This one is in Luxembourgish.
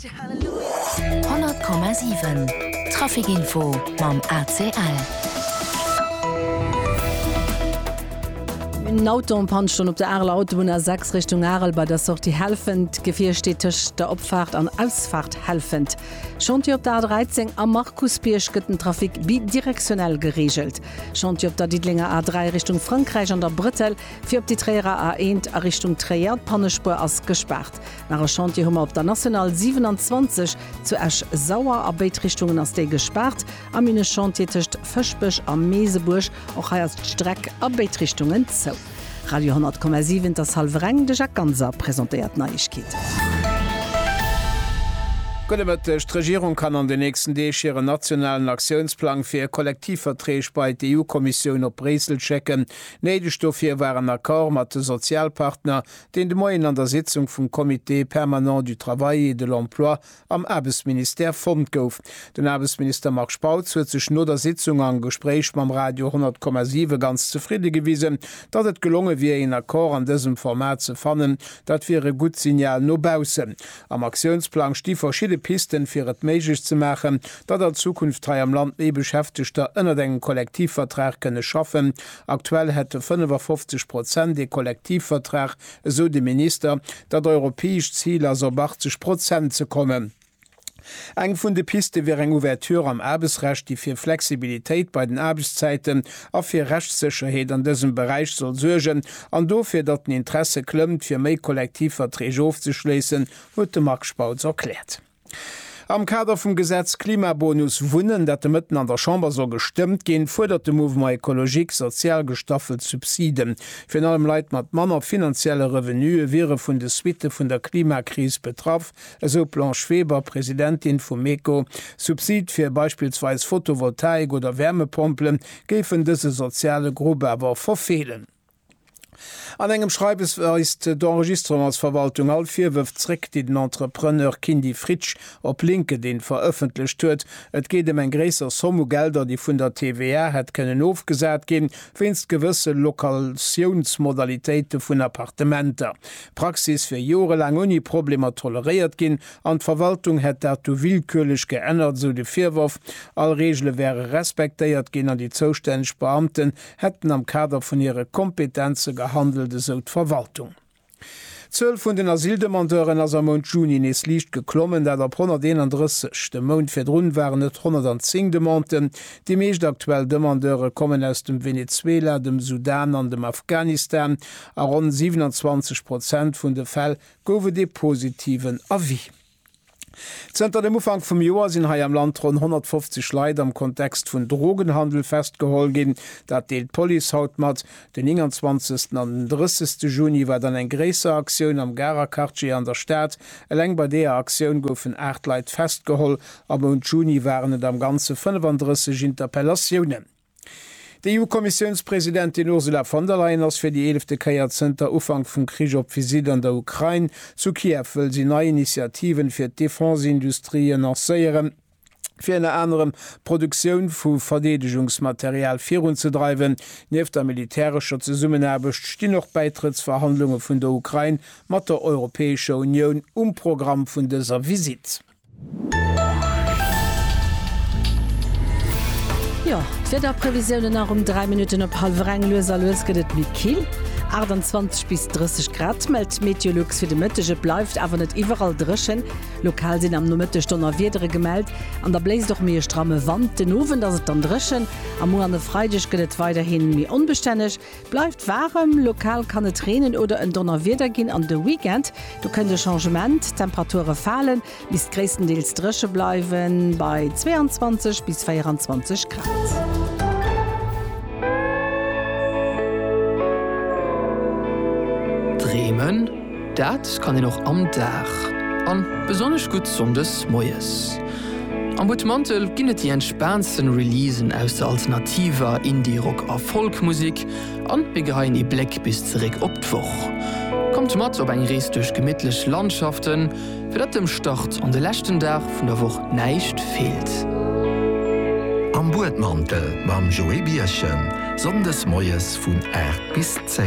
Honnert Komma siwen, Trafikinfo mam ACL. Eng Autopann stonn op der Areler Autobunn A6 Richtung Arel bei der Sortie Helfent. D'Gefier steet tëscht der Opfaart an Ausfaart Helfent. Chantier op der A13 am Markusbierg gëtt den Trafic bidirektionell gereegelt. Chantier op der Diddelenger A3 Richtung Frankräich an der Brëttel fir op déi Tréierer A1 a Richtung Tréier. D'Pannespuer ass gespaart. Nach e Chantier hu mer op der National 27 zu Esch-Sauer. A béid Richtungen ass déi gespaart. A Minechantier tëscht Fëschbech a Meesebuerg. Och hei ass d'Streck a béid Richtungen zou. Radio 10,7 Der Salvereng, De Jacques Ganser presentéiert d'Neiegkeeten. Gudde Mëtteg. D'Regierung kann an den nächsten Deeg hiren nationalen Aktiounsplang fir Kollektivverträg bei d'EU-Kommissioun op Bréissel schécken. Néideg dofir war en Accord mat de Sozialpartner, deen de Moien an der Sitzung vum Comité permanent du Travail et de l'Emploi am Aarbechtsministère fonnt gouf. Den Aarbechtsminister Marc Spautz huet sech no der Sitzung am Gespréich mam Radio 10,7 ganz zefridde gewisen, datt et gelonge wier een Accord an dësem Format ze fannen. Dat wier e gutt Signal no baussen. Am Aktiounsplang sti verschidde Pisten, fir et méiglech ze maachen, datt an Zukunft hei am Land méi Beschäftegter ënnert engem Kollektivvertrag kënne schaffen Aktuell hätte 55 Prozent ee Kollektivvertrag, esou de Minister. Dat europäescht Zil ass op 80 Prozent ze kommen. Eng vun de Piste wier eng Ouverture am Aarbechtsrecht, déi fir Flexibilitéit bei den Aarbechtszäiten a fir Rechtssécherheet an dësem Beräich soll suergen, an dofir, datt den Interesse klëmmt, fir méi Kollektivverträg ofzeschléissen, huet de Marc Spautz erkläert. Am Kader vum Gesetz Klimabonus Wunnen, dat de Mëtten an der Chamber soll gestëmmt ginn, fuerdert de Mouvement Ecologique sozial gestaffelt Subsiden. Virun allem Leit mat manner finanzielle Revenuë wiere vun de Suitte vun der Klimakris betraff, esou d'Blanche Weber, Presidentin vum MECO. Subside fir beispillsweis Fotovoltaik oder Wärmepompelen géifen dëse soziale Grupp awer verfeelen. An engem Schreiwes weist d'Enregistrement als Verwaltung all Virwërf zréck, déi den Entrepreneur Kindy Fritsch op LinkedIn verëffentlecht huet. Et geet ëm eng gréisser Somm u Gelder, déi vun der TVA hätt kënnen ofgesat ginn, wéinst gewësse Lokatiounsmodalitéite vun Appartementer. D'Praxis wier jorelaang ouni Problemer toleréiert ginn an d'Verwaltung hätt dat du willkürlech geännert, esou de Virworf. All Reegele wäre respektéiert ginn an déi zoustänneg Beamten hätten am Kader vun hire Kompetenze gehandelt, esou d'Verwaltung. D'Zuel vun den Asyldemandeuren ass am Mount Juni nees liicht geklommen, dat op 131. De Mount virdrun waren et 110 Demanden. Déi meescht aktuell Demandeure kommen aus dem Venezuela, dem Sudan an dem Afghanistan. A ronn 27 Prozent vun de Fäll gouf et ee positiven Avis. Zënter dem Ufank vum Joer sinn hei am Land ronn 150 Leit am Kontext vun Drogenhandel festgeholl ginn. Dat deelt d'Police haut mat. Den 29 an den 30 Juni war dann eng gréisser Aktioun am Garer Quartier an der Stad. Eleng bei deeër Aktioun goufen 8 Leit festgeholl. Am Mount Juni waren et am Ganze 35 Interpellatiounen. D'EU-Kommissiounspresidentin Ursula von der Leyen ass fir déi eelefte Kéier zënter Ufank vum Krich op Visitt an der Ukrain. Zu Kiew wëll si nei Initiativen fir d'Defense-Industrië lancéieren, fir ënner anerem d'Produktioun vu Verdeedegungsmaterial virunzedreiwen. Nieft der militärescher Zesummenaarbecht stinn och Bäitrëttsverhandlunge vun der Ukrain mat der Europäescher Unioun um Programm vun dëser Visitt. Jo, d'Wiederprevisiounen nach um 3 Minutten op hallwer eng. Lues a lues gëtt et méi kill, 28 bis 30 Grad mellt d'Meteolux fir de Mëtteg. Et bleift awer net iwwerall dréchen, lokal sinn am Nomëtteg Donnerwiedere gemellt an da bléist och méi e stramme Wand. Den Owend ass et dann dréchen a muer an e Freideg gëtt et weiderhi méi onbestänneg. Bleift waarem, lokal kann et reenen oder en Donnerwieder ginn an de Weekend do kënnt e Changement, d'Temperature falen, misst gréisstendeels dréche bleiwen bei 22 bis 24 Grad. Bremen. Dat kann een och am Dag, an besonnesch gutt Sonndes moies. Am Butmantel ginn et déi entspaantsten Releasen aus der alternativer, Indie, Rock a Folk Musik, an mir geheien ee Bléck bis zeréck op d'Woch. Kommt mat op eng Rees duerch gemittlech Landschaften, fir datt dem Start an de leschten Dag vun der Woch näischt feelt. Am Buedmantel mam Joé Birchen, Sonndes moies vun 8 bis 10.